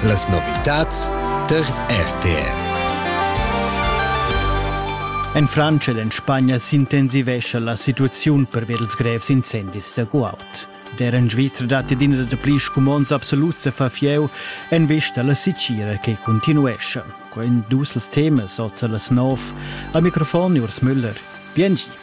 Las novitads tar RTR. En Frantscha ed en Spagna s'intensivescha la situaziun pervia dels grevs incendis da guaud. Der in Svizra datti d'ina da pli scumonds absoluts da far fieu en vista alla Sicira che continuescha. Quei dus els temas oz las nov. Al microfon Urs Müller. Biengi.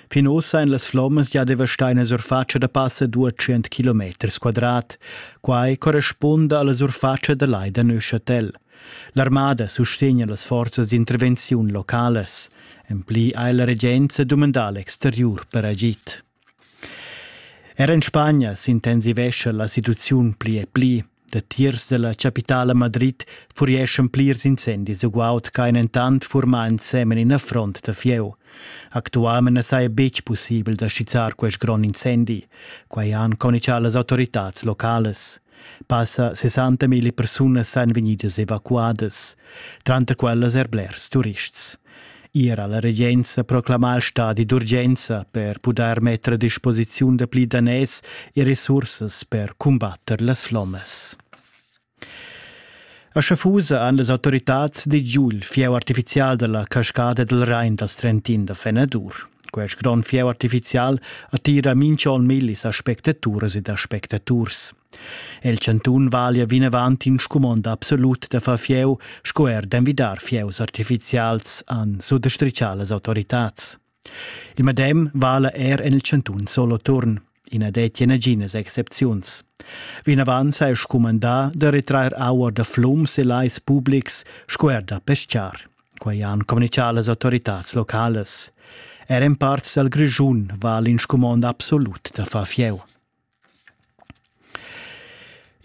Fin ussa en las flommas gia devastaina surfatscha da passa 200 km quadrat. Quai correspunda alla surfatscha da lai da Neuchâtel. L'armada sustegna las forzas d'intervenziun localas. En pli ha la regenza dumandà l'exteriur per agid. Er en Spagna s'intensivescha la situaziun pli e pli. Datiers dalla capitala Madrid purieschan plirs incendis ugaut ch'ein entant furmà ensemen ina front da fieu. Actualmein na saja betg pussibel da skizzar quest grond incendi. Quai han communicà las autoritads localas. Passa 60.000 persunas èn vegnidas evacuadas. Tranter quellas er blers turists. Ier ha la regenza proclamà stadi d'urgenza per pudair metter a disposiziun da pli daners e resursas per cumbatter las flommas. A Schafusa han las autoritads digiul fieu artificial dalla cascada del Rhein dal Trentin da Fenadur. Quest grond fieu artificial attira minch'on millis aspectaturas ed aspectaturs. El chantun valia vinavant in scumond absolut da far fieu sco er d'envidar fieus artifizials han suttostrichà las autoritads. Il medem vala er en il chantun Soloturn. I na dettia naginas excepziuns. Vinavant s'ha scumandà da retrair aua da flums e lais publics sco er da pescar. Quai han communitgà las autoritads localas. Er en parts dal Grischun vala in scumond absolut da far fieu.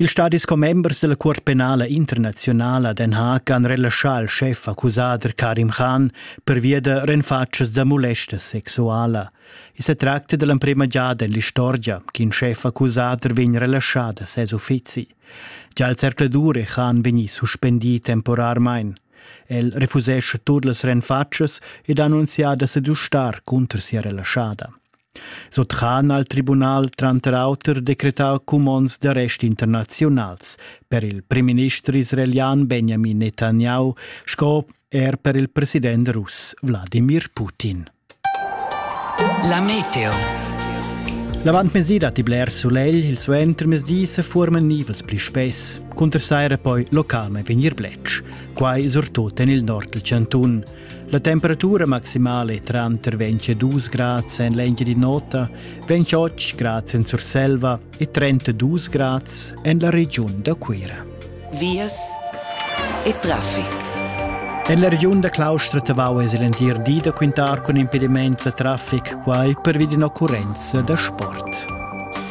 Ils stadis commembers dalla Cuort penala internaziunala Den Haag han relaschà al schef accusader Karim Khan pervia da renfatschas da molesta sexuala. I sa tracta dall'emprema giada en l'istorgia ch'in schef accusader vegn relaschà da ses uffizi. Già al zercladur è Khan vegnì suspendì temporarmain. El refusescha tut las renfatschas ed ha annunzià da sedustar cunter sia relaschada. Sut han al tribunal tranter auter decretau cumonds d'arrest internaziunals per il primminister israelian Benjamin Netanyahu sco er per il president russ Wladimir Putin. La meteo. L'avantmezdi datti bler sulegl, il suentermezdi se forman nivels pli spess. Cunter saira poi localme vegnir blec. Quai surtut en il nord del Cantun. La temperatura maximale tranter 22 grads en l'Engiadi Nota, 28 grads en Surselva e 32 grads en la regiun da Cuira. Vias e traffic. En la regiun da Claustra Tavau es l'entir di da quintar cun impediments a traffic quai per vid ün'occurrenza da sport.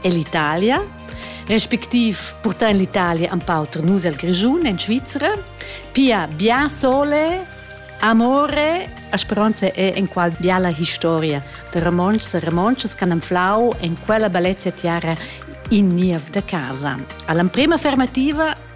e l'Italia, respectiv portar in l'Italia un pau per nus al Grischun in Svizzera, pia bien sole, amore, a speranza è in qual biala historia de romonschs e romonschas che hanno flau in quella bellezza terra in niev de casa. All'emprima affermativa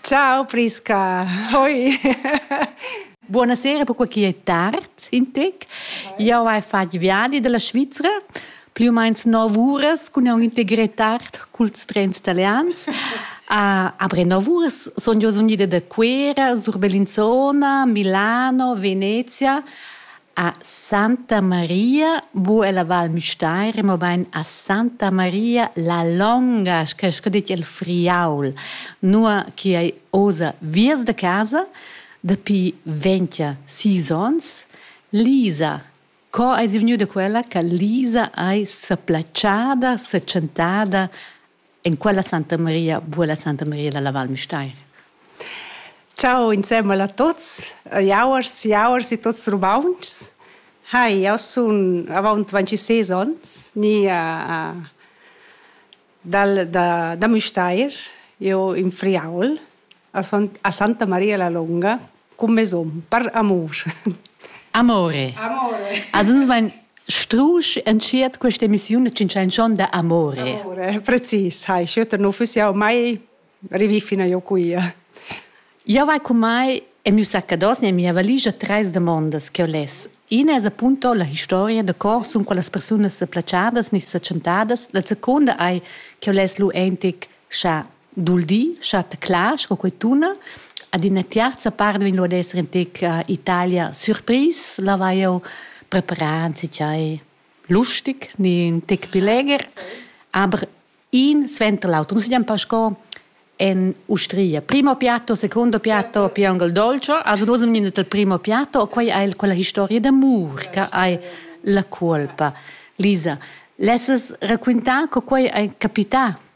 Ciao Prisca, hoi. Buonasera per quei che è tard in tec. Io hai fatto viadi dalla Svizzera più o meno 9 ore con un integrità cults trens italians. Uh, après 9 ore sono io venuta da Cuera, sur Bellinzona, Milano, Venezia A Santa Maria bu ella Val Müstair, mobain a Santa Maria la longa, sche sco dit il Friaul, nua chi ei oza viers da casa dapi ventia sis ons, Lisa. Co eis ì vgniu da quella che Lisa ei s'applatschada, setschentada En quella Santa Maria buca Santa Maria dalla Val Müstair. Ciao insemmel a tots, jauers, jauers e tots rumauns. Hai, eu sun avant 26 ans, ni uh, uh, dal, da, da Müstair, eu in Friaul, a Santa Maria la Longa cum mesom, per amurs. Amore. Amore. Also nus vain strusch entschiet questa emissiun cin chanzon da amore. Amore, precis, hai schütter nu füss jau mai rivi fina jo quia. Jo vai cum mai e miu saccados ne mia valigia tres demandas che ho les. Ina es appunto la historia da cor sun qualas persunas se placiadas ni se chantadas. La seconda ei che ho les lu entic scha dul di schat clar sco quei tuna ad ina terza part vegn ad esser in tec uh, Italia surpris la vai eu preparan si chai lustig ni in tec più leger aber in sventa l'auto non si diam pasco en Ustria primo piatto secondo piatto piangol dolce also nus am niente il primo piatto quei è quella historia d'amor che hai la colpa Lisa, lesses raccontar co quei è capità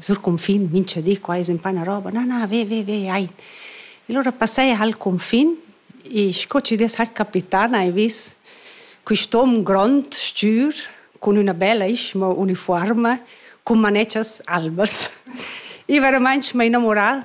sur cunfin, mincha di, qua es ün na roba, na, na, ve, ve, ve, ai. E lura passaie ha'l cunfin e sco chi dess ha'l capità n'hai vis quist'om grond, stür, cun üna bella ischma unifuorma, cun manetschas albas. I veramaing m'ha innamurà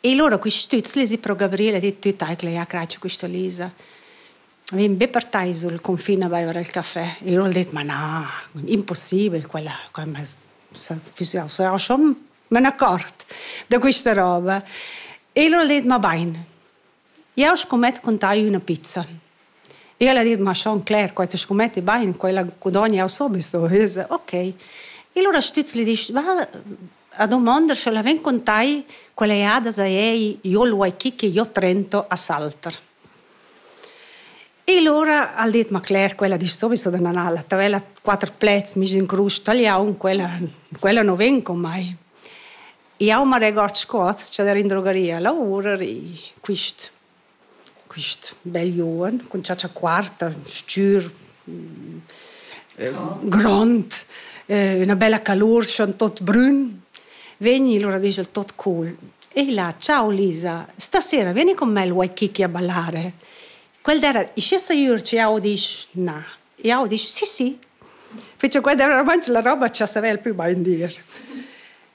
E lura quist stüz lezi pro Gabriel e dit tüt eicla, ja cratscha quista Lisa. Vegn be partai sul confin a baiver il café. E lura al det, ma na, impossibel quella, quella sarà schon me ne accort da quista roba. E lura al det, ma bain. Jeu scumett contagl üna pizza. Igl ha dit: Ma schon cler, quei ti scumetti bein, quella gudogn jeu sowieso. E io se: Okay. E allura stüz gli disch: Va a domander, sche la ven con tai quella jada za ei, io lu hai chi che io trento a Salter. E allora ha dit: Ma cler, quella disch sowieso da nan alla tavella quatter plaids, mi in crus tagliaun, quella quella no ven con mai. Jau ma regord sco atscha der in drogaria lavurar e quist quist bel Joen cun chatscha quarta, stür, grond, üna bella calur schon tot brün, vegni lura disch el tot cool. E illa ciao Lisa, stasera vieni con me, vuoi chicchi a ballare? Quel d'era, ischi saiur che jau disch na. Jau disch sì, sì. Ficha quella era romansch la roba cha savel pü bain dir.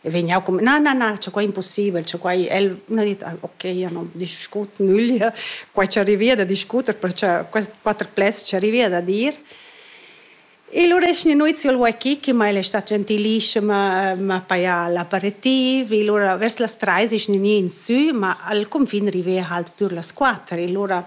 E vegn jau cum, na, na, na, c'è qua impossibel, c'è qua... El ha dit, ah, ok, io non discut nüglia, qua ci arrivi da discuter, perché quatter plets ci arrivi da dir. E lura esce nuizio il Waikiki, che mai è stata gentilissima, ma paia l'aperitivo, e lura verso las tre esce nini in su, ma al confin arrivi halt pur las quattro, e lura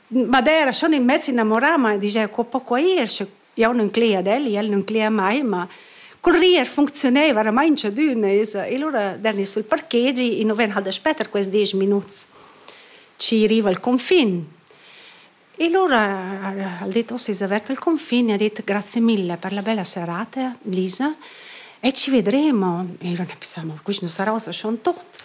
Ma dai era schon in mezz innamorà, ma digia co po quai ir sche jau nun cleia ad el, el nun cleia mai, ma cul rir funcziunaiva varamaing tschadüna esa. E lura darni sul parkegi, i nu ven hal daspe tar quist desch minuts, schi riva il cunfin. E lura ha'l dit: «Oh, s'es avert il cunfin?» e ha dit: «Grazie mille per la bella serata, Lisa, e ci vedremo». E lura ne pessamu: «Quist nu sarà uossa schon tuot».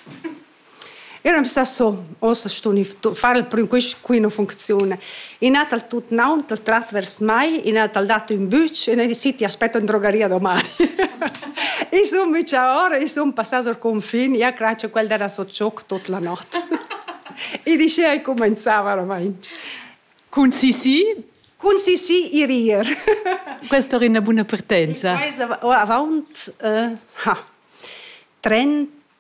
Eu am sa so, ossa stun far il prüm quist quina funcziun. I n'ha dal tut naun dal trat vers mai, i n'ha dal dat ün bütsch e ne decidi aspetto in drogaria doman. I sun micha ora, i sun passà sur confin, ja craccio quel dera so tschocc tot la not. I dice ai comenzava oramaing. Cun Sisi? Cun Sisi i rir. Questa è una buona partenza. Questa, oh, avaunt, uh, ha, 30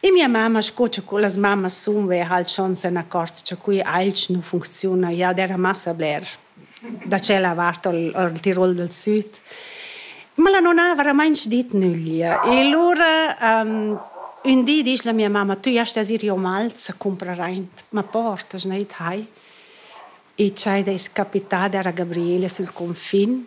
E mia mamma, sco cha las mammas sun, veva halt schon se n'accort cha quei ailch nu funcziuna. Ja d'eira massa bler da tschella vart al al Tirol dal süd. Ma la nona ha veramainch dit nüglia. E lura ün di disch la mia mamma: «Tü jast as ir io mals a cumprar aint, ma port, as gneit hai?» E tschai d'ais capitada era Gabriele sül cunfin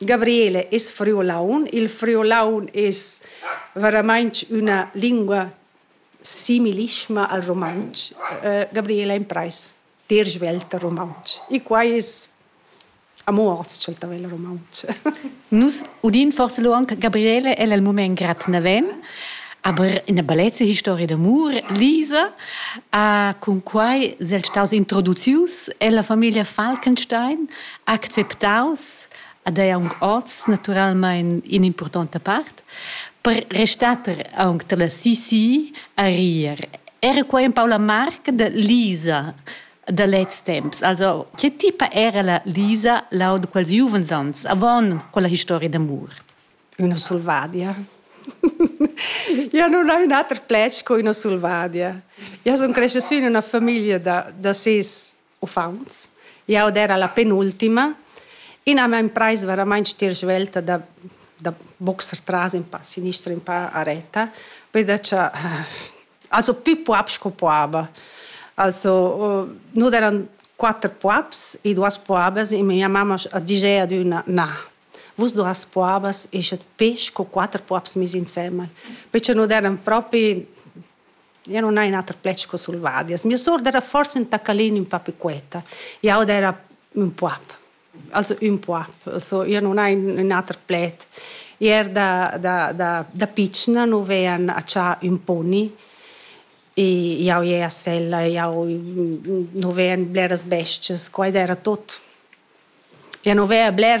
Gabriele es friolaun. Il friolaun es veramainch üna lingua similisma al rumantsch. Gabriele imprais dir svelt rumantsch. E quai es amo ozch'el ta vegl rumantsch. Nus udin forsa lo anche Gabriele, el al mumaint grad naven, aber ina bellezza historia d'amur, Lisa, ha cun quai sel staus introducius ella famiglia Falkenstein acceptaus ad ei aunc oz naturalmein in'impurtonta part per restar aunc dalla CC a rir. Era quei empau la marca de Lisa da lez temps. Also, che tipa era la Lisa lau de quels giuvens ans, avon quella historia d'amur? Una solvadia. Io non ho un ater plec co una solvadia. Io sono cresciuta in una famiglia da, da sis uffants. Jau era la penultima. Ina m'ha imprais veramain stir svelta da, da boxer tras in pa sinistra, in pa a retta, perché cha, also più puops co puaba. Also, nus eran quatter puops e duas puabas e mia mamma ha ditg ad üna «Na, vus duas puabas eschet pesch co quatter puops mis insemmel», perché nus eran propi Jeu non hai un ater plec co sulvadias. Mia sour era forsa ün tacalin ün pa piquetta. Jau era ün poap, also ün poap. Also jeu non hai ün ater pled. I er da, da, da, da pitschna nu vean accià ün poni e jau jei a sella, jau nu vean bleras bestias, quaid era tot. Jeu nu vea bler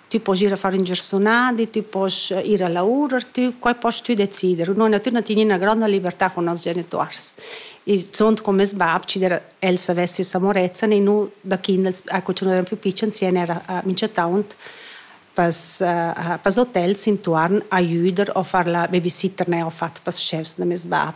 Tü poss ir a far ün giarsunadi, tü poss ir a lavurer, tü, quai poss tü decider. Nun na tü na tin ina gronda libertà con noss genituors. Il zuond con meis bab ci der el savess sü Samorezzan e nu da chi'nd els a cuciunà ün più picen sien era a mincetaunt pas pas hotels intuorn a jüder o far la babysitter ne ho fat pas chefs da meis bab.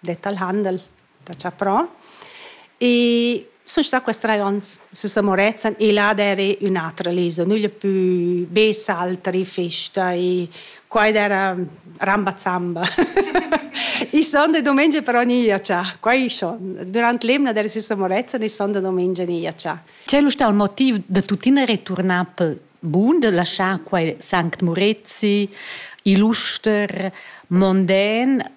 det al Handel da Chaprò e sun stà quest trais ons süs a Morezzan e là d'eira ün'atra leza, nügl pü be saltari, festa e qua ed era ramba zamba. I son e dumengia però ni a cha, qua i son. Durant l'emna d'era süs a Morezzan e son da dumengia ni a cha. Quel usta il motiv da tuttina returnar pel bun, da laschar quai Sanct Murezi, Illuster, Mondän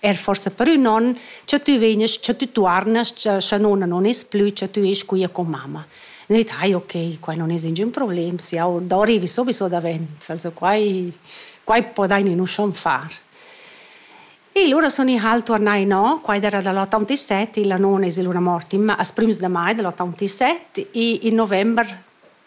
Er forse per ün on, cha tü vegnas, cha tü tuarnas, cha, scha nona non es plü, cha tü esch quia con mamma. Ün dit, ai, ok, qua non es ingün problem, se jau do arrivi sowieso davent, also quai, quai podaini nu schon far. E lura son i hal tornai no, quai era dall'87, la nona es lura morta in, as prims de mai dell'87 e in november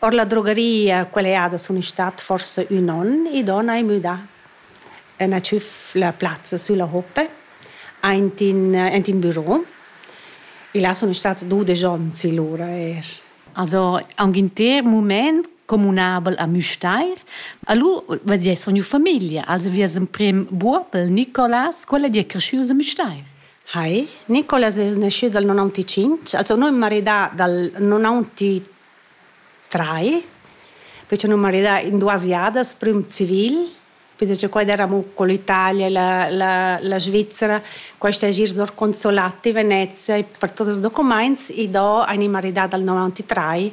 Ord la drogaria quella jada sun i stat forsa ün on, i don hai müdà e n'ha tschüf la plazza sülla hoppe aint in aint in büro e là sun stats dudesch ons lura eir. Also aunc inter mumaint cumünabel a Müstair. Alura vezia sun gnü famiglia, also vi es emprim Buobel, Nicolas, quel è dir creschü a Müstair. Hi, Nicolas es naschü dal nonantetschintg, also nu ün maridà dal nonantetrai, perche nu maridà in duas jadas, prüm civil, perche quai d'eravamo co l'Italia, la, la, la Svizzera, quaista es gnir sor consolati Venezia e per tots els documaints i do ani maridà dal nonantetrai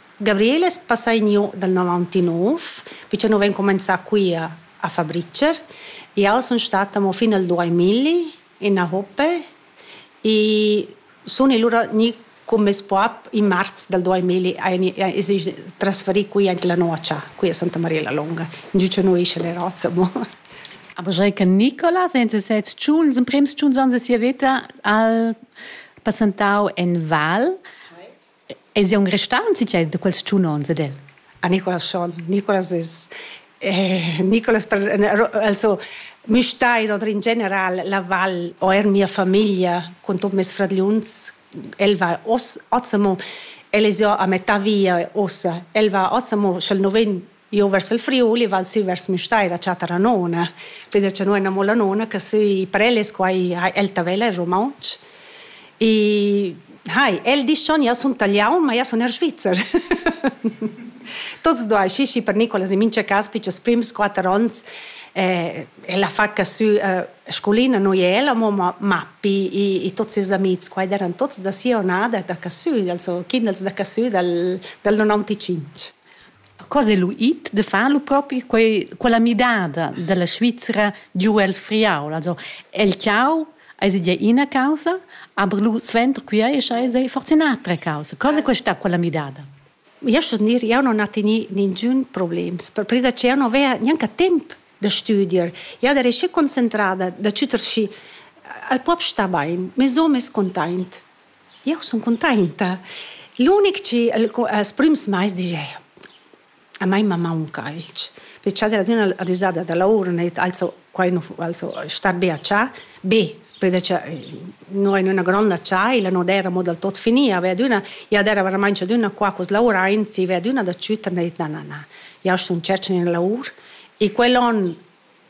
Gabriel es passà igno dal novantanov, pichanò vain cumanzà quia a Fabricer. Jau sun stata amo fin al duamilli in Ahope e sun lura gnü cun meis bap in marz dal duamilli es i trasferì quia anche la nuocha, qui a Santa Maria la Longa, ingio cha no escha le razza amo. Aber Jai che Nicola senza set tschun, ils emprems tschun ans da sia veta al passantau en Val. Es aunc restau in tgei da quels tschun onns ed el? A Nicolas schon. Nicolas es eh, Nicolas per, also mi stai oder in general la val o er mia famiglia con tot mes fradgliuns el va os Azamo el es ja a metà via ossa el va Azamo sch'el no ven Io vers il Friuli val sü vers Müstair a chattar a nona, peder cha no amo la nona che sü Preles, qua el Tavella in rumauntsch. E hai, el disch schon, io sun talian, ma io sun er Svizzer. Tots due, sì, sì, per Nicolas in mincha cas, pichas prims quatter ons, eh, la fa che sü eh, scolina noi ella, ma Mappi e, e tutti i amici qua erano tutti da Sionada, da Cassù, also Kindels da Cassù, dal, dal 95. Cosa è lu it de far lu propi quei, quella midada dalla Svizzera giu el Friaul? Also el ciao eis ide ina causa, aber lu sventr qui ei eis ei forse un'altra causa. Cosa è questa quella midada? Io sto dir, io non ho teni ningun problems, perpresa che io non avea neanche temp da studier. Io ero schi concentrada da cuter schi al pop sta bain, mes hom es containt. Jeu sun cuntainta. L'unic chi el els prüms mais disch a mei ma maunca alch, perche ad adüna ad üsada da Laurenet also quai nu also sta be a chà. Be perche no in üna gronda chaila no d'eira mo dal tot finì, aveva adüna ja d'eira veramaing adüna qua cu's lauraints, i veva adüna da chütter na na na. Jau sun tschercha üna laur e quell'on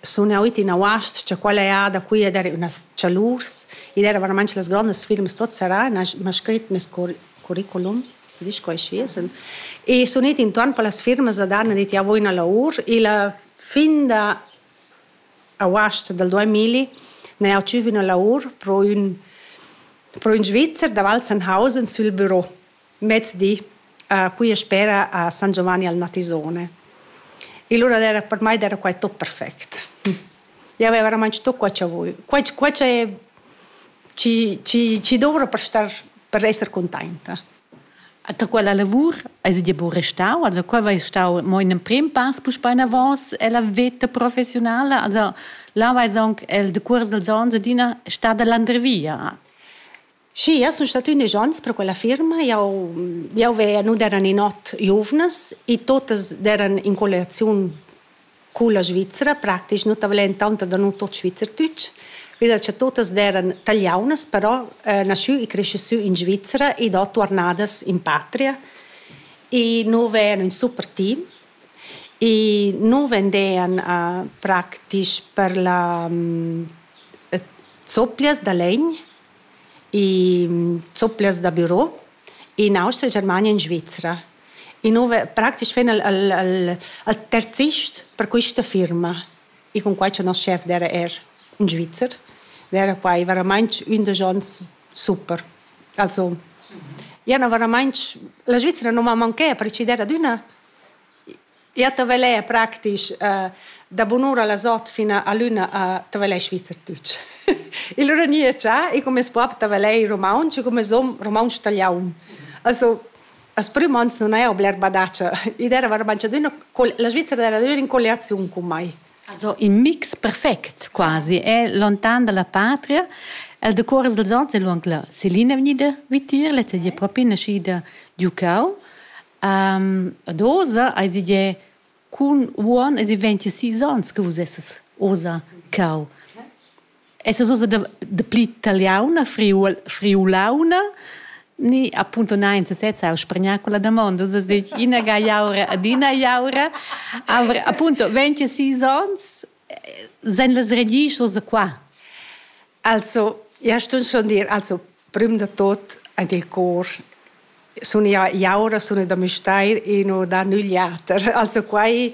sun eau it in auast cha quella eau da qui ed eir üna s-chalurs. Id eira veramaing las grondas firmas tuot serrà e n'ha m'ha scrit meis curriculum, chi disch quai schi es. E sun it intuorn per las firmas ad han dit eau voul üna laur. Illa fin da auast dal duamilli n'ha eau tschüf üna laur pro ün pro ün Svizzer da Walzenhausen sül büro. mezdi a Puia Spera a San Giovanni al Natisone. E lura era, per mai era quai tot perfect. Io avevo veramente tutto quello che voglio. Quello, quello è ci, ci, ci dovrò per, star, per essere contenta. Da quella lavur hai dir buca restau? Also qua vai stau mo in prim pass puspei bein avos ella veta professionale. Also là vai anche el de curs dels ons adina stada landrevia. Sì, jau sun stata ündesch ons pro quella firma. Jau jau veia nu d'eran in ot giuvnas e totas d'eran in colliaziun culla Svizra praktisch, nu t'avelen intanto da nu tot Schweizerdeutsch. Quella cha totas d'eran tagliaunas, però naschü e cresce sü in Svizra e do tuornadas in patria. E nu vean ün super team e nu vendean praktisch per la zoppias da legn e zopplias da büro in Austria, Germania e in Svizra. E nu praktisch ven al, al, al, al terzist per quista firma. E con quai cha nos chef d'era er in Svizzer, d'era quai veramainch ün da gens super. Also, ja, no veramainch, la Svizra non m'ha manchè, per ci der ad üna Ja tavelè praktisch da bunura las ot fina a l'üna a tavelè Schweizerdeutsch. Il Renier cha e come sbrob tavelè romaunsch e come som romaunsch taliaun. Also as prüm ans nun haja bler badatscha. Id era vairamaing la Svizzera era adüna in colliaziun cun mai. Also in mix perfect quasi è lontan dalla patria. El decuors dels ons è luong la Selina vegnida vitier, lezza di è propi naschida giu Cau. Um, ad oza eis ide cun uon ed i venti sis ons che vus esses oza cau. Esses oza de, de pli taliauna, friul, friulauna, ni appunto nein se sezza eu sprigna quella domanda, oza det ina ga iaura ad ina iaura, aber appunto venti sis ons, sen las regisch oza qua. Also, ja stun schon dir, also prüm da tot ant il cor sun ja jaura sun da Müstair e no da nügl jater. Also quai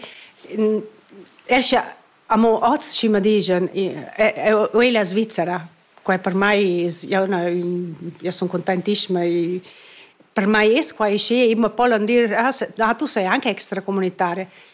escha amo oz schi ma digen o ella Svizzera. Quai per mai es ja üna ja sun contentiscima e per mai es quai schi e ma pollan dir ah tu sei anche extracomunitaria.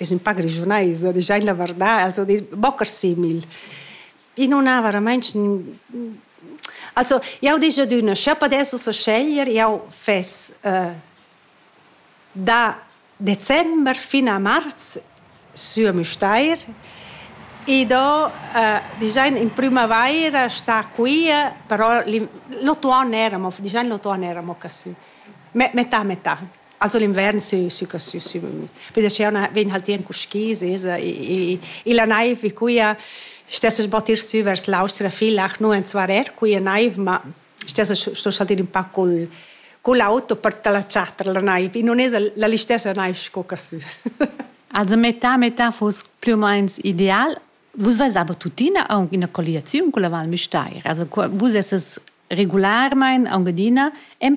Es ün pa grischunaisa, a disch eir la varda, als ho dis bocher simil. I nun ha varamainch Also jau disch adüna, sch'eu pudess ussa sceglier, jau fess da december fin a marz sü a Müstair e do dischan in prümavaira stà quia, però l'utuon n'era amo dischan l'utuon n'era amo ca sü, metà metà. Also l'invern sü sü sü sü vedi che una vegn halt in cuschis esa e e la naiv vi cuia stessa battir sü vers l'austra fil ach nu en svarer cuia naiv ma stessa sto saltir un pa col con l'auto per talacciar per la naiv e non es la l'istessa naiv sco ca sü Also metà metà fos più o meno ideal Vus vesava tuttina aunc ina colliaziun con la Val Müstair, also vus esses regularmein aunc adina en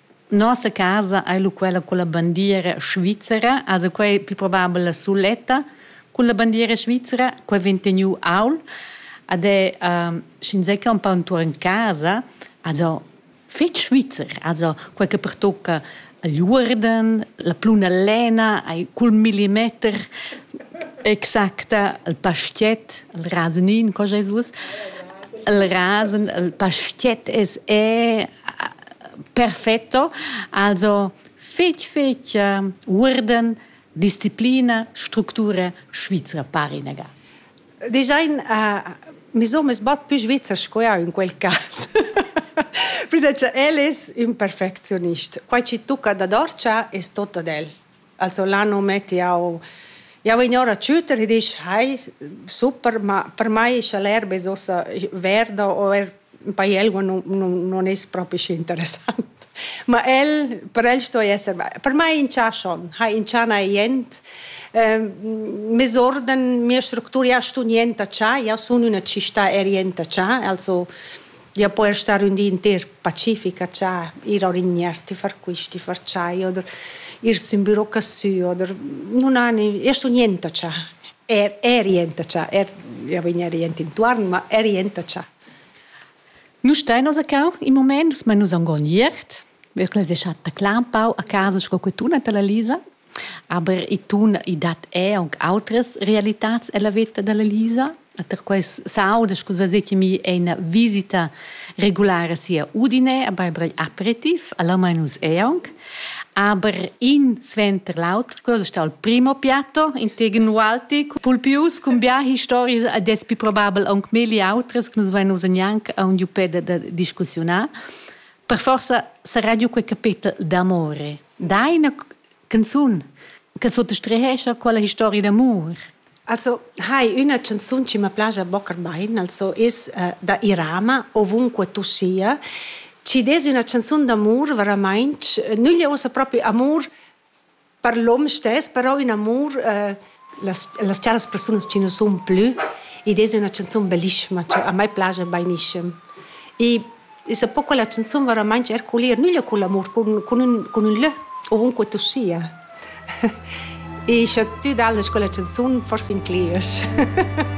Nossa casa ei lu quella culla bandiera svizzera, also quei pli probabel la suletta culla bandiera svizzera, quei vegn teniu aul ed è ehm, sch'inzatgei empau entuorn casa, also fetg svizzer, also quei che pertocca igl uorden, la pluna lena ei cul millimeter exacta, il pastiet, il rasenin, co sch'ei suos, il rasen, il pastiet es è perfetto. Also fetg fetg uh, uorden disciplina structura svizra parinega. Design uh, mi so mes bat più svizzer sco ja in quel cas. Pli da che el es ün perfectionist. Quai ci tucca da dorcia es tot ad el. Also là non metti jau jau vegn ora a tschütter e disch hai super ma per mai scha l'erba es uossa verda o er in paiel non non non es propi schi interessant ma el per el sto esser per mai inchà schon ha inchà na jent mes uorden mia structura ja stu nienta cha ja sun üna città er jenta cha also Ja po er star ün di inter Pacifica cha ir a orignar, ti far quist, ti far tschai oder ir sün büro cassü oder nun hani, io sun jenta cha, er er jenta cha, er ja vegn er jent intuorn, ma er jenta cha. Nu stain nos a cau in mumaint, nus men nus am gon iert. Wir clös eschat da Clampau a casa sco que tuna ta la Lisa Aber i tun i dat er aunc outras realitats ella veta dalla Lisa. Ter quels sauda sco vezetimi ina visita regulara sia Udine a Barbara Aperitif, alla Mainus Eong. Aber in sventer l'auter, cosa sta il primo piatto integen ualti pulpius cun bia histories ad es pi probabel aunc meli outras che nus vain usa gnanca aun giu peda da discussiunar. Per forza sarà giu quei capetel d'amore. Da ina canzun che suttostrehescha quella historia d'amur. Also hai una canzun che mi piace bocca bain, also ist uh, da Irama, ovunque tu sia. Ci des una canzun d'amor veramente, nulla usa proprio amor per l'om stes, però un amor uh, las, las charas persunas che non sun plü ed es üna chanzun bellissima che a mai plaja bainischem. E es un po quella chanzun veramaing herculer, nüglia cun l'amur, cun, cun, ün, cun ün lö ovunque tu sia. e scha tü dallas quella chanzun, forse incliesch.